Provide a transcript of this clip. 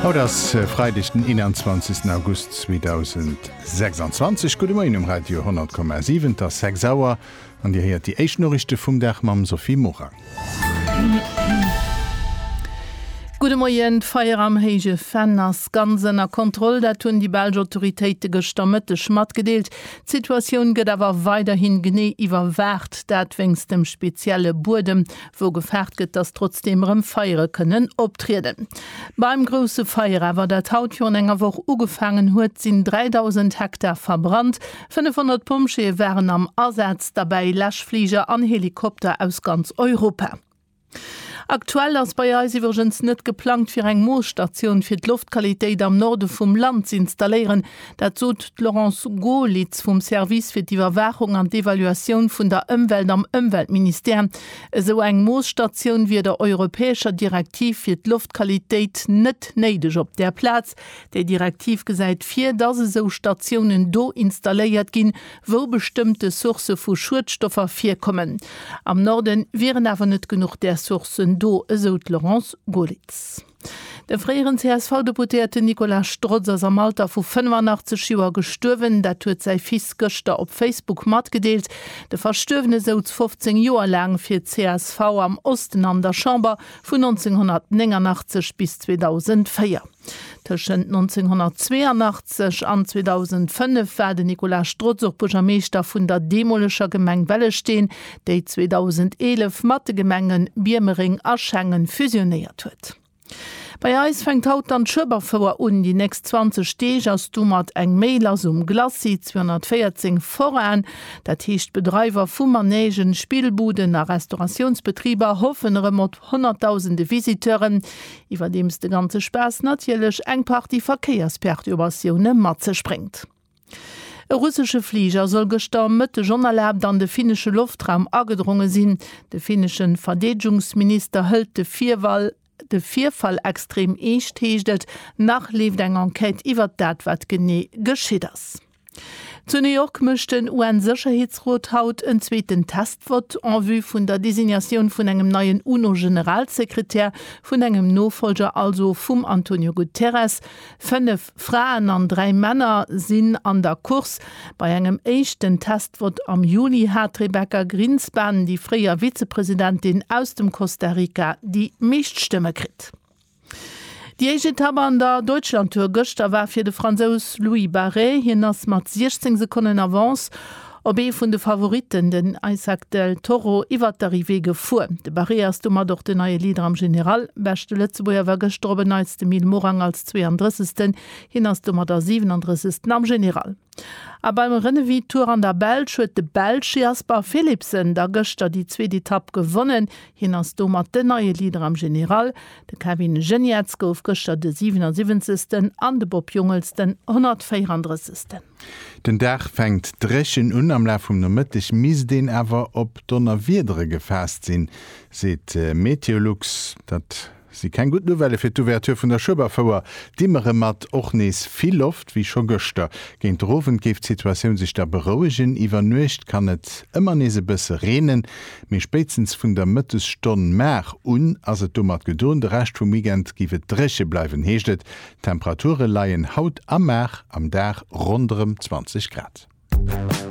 Haut ass Freideg den 21 August 2026. Gudde Moien um Radio 10,7, et ass 6 Auer an Dir héiert déi éischt Noriichte vum Dag mam Sophie Morang. Gudde Moien, D'Feier am Héije Venn ass ganz ënner Kontroll, dat hunn déi belsch Autoritéite gëschter Mëtteg matgedeelt. D'Situatioun gëtt awer weiderhi genee iwwerwaacht, dat wéinst dem spezielle Buedem, wou gefaart gëtt, dass trotzdeem erëm Feiere kënnen optrieden. Beim grousse Feier awer, dat haut virun enger Woch ugefaangen huet, sinn 3.000 Hektar verbrannt. 500 Pompjeeë waren am Asaz, derbäi Läschfliger an Helikopter aus ganz Europa. Aktuell ass bei eis iwwregens net geplangt, fir eng Moosstatioun fir d'Loftqualitéit am Norde vum Land z'installéieren. Dat sot d'Laurence Goerlitz vum Service fir d'Iwwerwaachung an d'Evaluatioun vun der Ëmwelt am Ëmweltministère. Esou eng Moosstatioun wier der europäescher Direktiv fir d'Loftqualitéit net néideg. Op där Plaz, Déi Direktiv gesäit vir, dass esou Statiounen do installéiert ginn, wou bestëmmte Sourcë vu Schuedstoffer virkommen. Am Norden wieren awer net genuch där Sourcen do, esou d'Laurence Goerlitz. De fréieren CSV-Deputéierten Nicolas Strotz ass am Alter vu 85 Joer gestuerwen. Dat huet säi Fils gëschter op Facebook matgedeelt. De Verstuerwene souz 15 Joer laang fir d'CSV am Osten an der Chamber, vun 1989 bis 2004. Tëschent 1982 an 2005 war den Nicolas Strotz och Buergermeeschter vun der deemoleger Gemeng Wellesteen. déi 2011 mat de Gemenge Biermereng a Schengen fusionéiert huet. Bei eis fänkt haut dann d'Schueberfouer un. Déi nächst 20 Deeg ass domat eng méi lass um Glacis 214 Forain. Dat heescht, d'Bedreiwer vu Manègen, Spillbuden a Restauratiounsbetriber hoffen erëm op honnertdausende Visiteuren, iwwerdeems de ganze Spaass natierlech eng Partie Verkéiersperturbatiounen mat sech bréngt. E russesche Fliger soll gëschter am Mëtteg onerlaabt an de finnesche Loftraum agedronge sinn. De finnesche Verdeedegungsminister hëlt de Virwall de Virfall extrem eescht, heescht et. Nach leeft eng Enquête iwwert dat, wat genee geschitt ass. Zu New York mécht den UN-Sécherheetsrot haut en zweeten Test-Vott en vue vun der Designatioun vun engem neien UNO-Generalsekretär, vun engem Nofollger also vum Antonio Guterres. Fënnef. Fraen an dräi Männer sinn an der Course. Bei engem éischten Testvott am Juli hat d'Rebecca Grinspan, déi fréier Vizepresidentin aus dem Costa Rica, déi meescht Stëmme kritt. Déi éischt Etapp an der Deutschlandtour gëschter war fir de Fransous Louis Barret. Hien ass mat 16 Sekonnen Avance Op ee vun de Favoritten, den Isaac Del Toro, iwwert d'Arrivée gefuer. De Barré ass domat och den neie Leader am General. Beschte Lëtzebuerger war gëschter op en Neits de Mil Morang als 32. Hien ass domadder 37. am General. A beim Renewi-Tour an der Belsch huet de Belsch Jasper Philipsen da gëschter déi zweet Etapp gewonnen. Hien ass domat den neie Leader am General. De Kevin Geniets gouf gëschter de 77. an de Bob Jungels den 134. Den Dag fänkt dréchen un, am Laf vum Nomëtteg misst een awer op Donnerwiedere gefaasst sinn, seet Meteolux. Dat si keng gutt Nouvellë fir d'Ouverture vun der Schueberfouer. Dimmere mat och nees vill Loft, wéi scho gëschter. Géint de Owend géif d'Situatioun sech da berouegen. Iwwer Nuecht kann et ëmmer nees e bësse reenen, mee spéitstens vun der Mëttesstonn mar un ass et domat gedoen. De Rescht vum Weekend géif et dréche bleiwen, heescht et. D'Temperature leien haut a mar am Dag ronderëm 20 Grad.